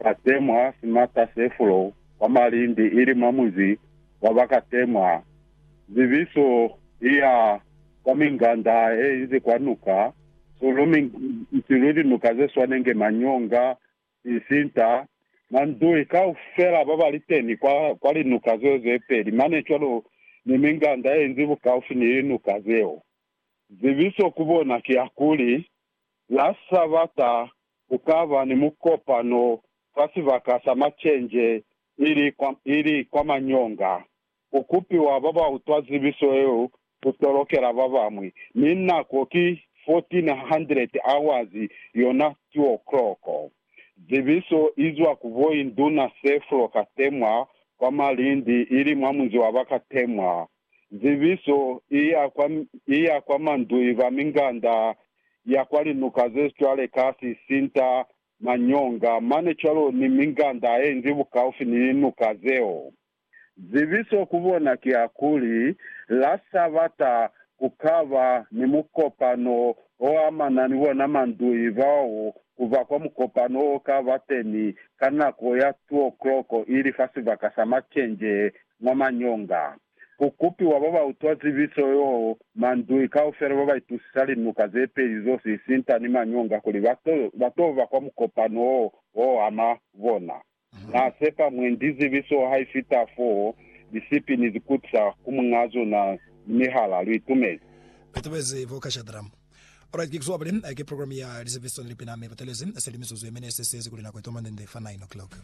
Ba temwa simata se fulo kwa malindi ili mwa muzi wa ba ka temwa. Zibiso i ya kwa minganda ye inzi kwa nuka, sulu, minsilu, linuka ze swana nge Manyonga, Isinta, Mandui, kaufela ba ba li teni kwa, kwa linuka zeo ze peli mane cwalo ni minganda ye inzi bukaufi ni linuka zeo. Zibiso ku bona ki ya kuli, La Sabata ku ka ba ni mukopano kwa sibaka sa macenje ili kwa, ili kwa Manyonga. Ku kupiwa ba ba utwa zibiso yeo ku tolokela ba bañwi, mi nako ki 1400 hours, yona two o'clock. Zibiso i zwa ku Boinduna Seflo Katemwa kwa Malindi, ili mwa munzi wa ba Katemwa. zibiso i ya kwa mandui ba minganda ya kwa linuka ze cwale ka sisinta, manyonga, mane cwalo ni minganda ye ngi bukaufi ni linuka zeo. Zibiso ku bona ki ya kuli, la sa bata ku ka ba ni mukopano o amana ni bona mandui bao ku ba kwa mukopano o ka ba teni ka nako ya 2:00 ili fa sibaka sa macenje mwa manyonga. Ku kupiwa ba ba utwa zibiso yo mandui kaufela ba ba itusisa linuka ze peli zo sisita ni manyonga kuli ba to, ba to ba kwa mukopano wo wo ama bona. Na sepa mwendi zibiso ha i fita foo, lisipi ni zikutisa ku muñaa zona ni mihala. Lu itumezi. Lu itumezi bo ka Shadramu. Alright, ki kuzuba pili ki program ya lizepiso ni lipina mi lu telezi selimiso ze mine se siezi kuli nako itomande nde fa 9 o'clock.